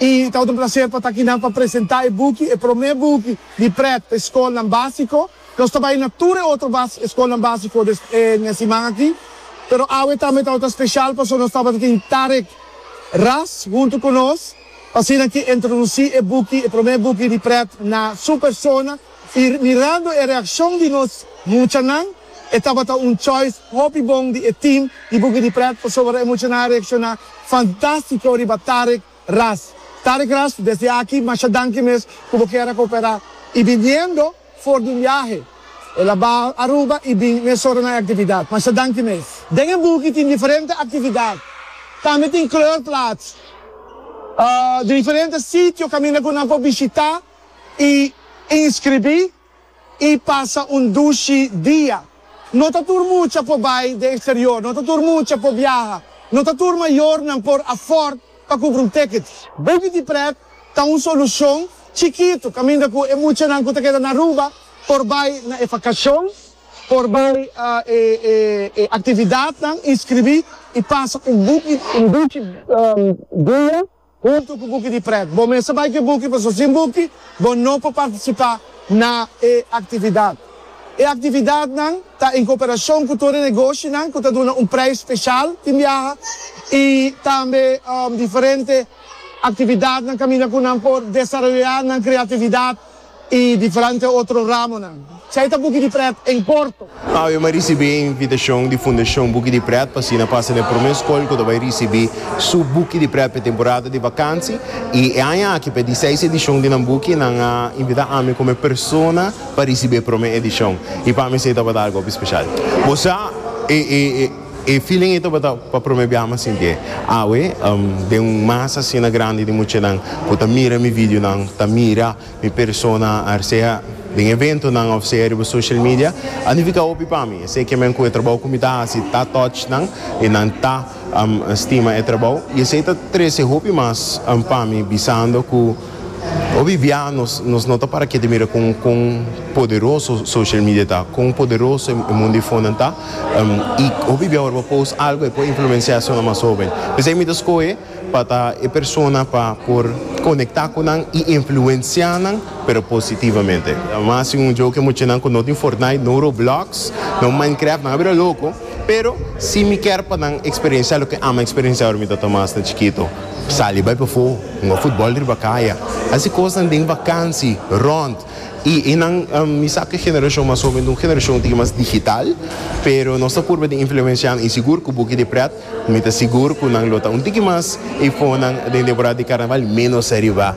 I ta otro placer pa ta aki nan pa presenta e buki, e prome buki di pret pa e scolnan basico. Nos ta bai na tur e otro bas scolnan basico des en e siman aki, pero awe tambe tabata special paso nos tabata tin Tarek Ras hunto cu nos, pa asina ki introduci e buki, e prome buki di pret na su persona. Y mirando e reaccion di nos muchanan, e tabata un choice hopi bon di e team di Boogie di Pret pasobra e muchanan a reacciona fantastico riba Tarek Ras. Tarek Ras, desde aki masha danki mes cu bo kier a coopera. Y biniendo for di un biahe, el a baha Aruba y bin mesora na e actividad. Masha danki mes. Den e Boogie tin diferente actividad. Tambe tin kleurplaats. Diferente sitio caminda cu nan por bishita. i inskribí i pasa un dushi dia. No ta tur mucha por bai den eksterior, no ta tur mucha por biaha, no ta tur mayornan por afòrd pa kubra un tèkit. Baby di prèt ta un solushon chikitu kaminda ku e muchanan ku ta keda na Aruba por bai na e vakashon, por bai e aktividatnan, inskribí i pasa un dushi dia. Huntu ku buki di prèt. Bo mester bai ku e buki pasobra sin buki bo no por partisipá na e aktividat. E aktividatnan ta en koperashon ku tur e negoshinan ku ta duna un preis speshal tin biaha i tambe diferente aktividatnan kaminda ku nan por desaroyá nan kreatividat. i diferente otro ramonan. Chai ta buki di pret en corto. Awe m'a ricibi e invitacion di Fundacion Buki di Pret pa asina pasa na e prome scol cu ta bai ricibi su buki di pret p'e temporada di vakantie. I e aña aki p'e diseis edicion di nan buki nan a invita ami como e persona pa ricibi e prome edicion. I pa mi esei tabata algo hopi special. Bo sa e. E feeling ei tabata pa prome biaha mi a sinti e. Awe, den un masa asina grandi di muchanan ku ta mira mi videonan, ta mira mi persona, a sea den eventonan òf sea riba social media, a nifiká hopi pa mi. Esei ke men ku e trabou ku mi ta hasi ta touch nan i nan ta stima e trabou i esei ta trese hopi mas pa mi bisando ku. Obidia nos nos no ta para kiet di mira con con poderoso social media ta, con poderoso e mundo di fonan ta, y obidia ora bo post algo e por influencia esona mas hoben. P'esei mi ta scohe pa ta e persona pa por conecta cu nan y influencia nan pero positivamente. Mas si un joke muchanan cu no tin Fortnite, no Roblox, no Minecraft nan a bira loco. Pero si mi ker pa nan eksperensiá loke Ama eksperensiá ora mi tabata mas na chikito, sali bai pafó, hunga futbòl riba kaya, hasi kosnan den vakansi, rònt i e nan. Mi sa ku e generashon mas hóben ta un generashon tin ke mas digital, pero nos ta purba di influenshanan i sigur ku buki di prèt mi ta sigur ku nan lo ta un tiki mas i fonnan den temporada di karnaval ménos riba.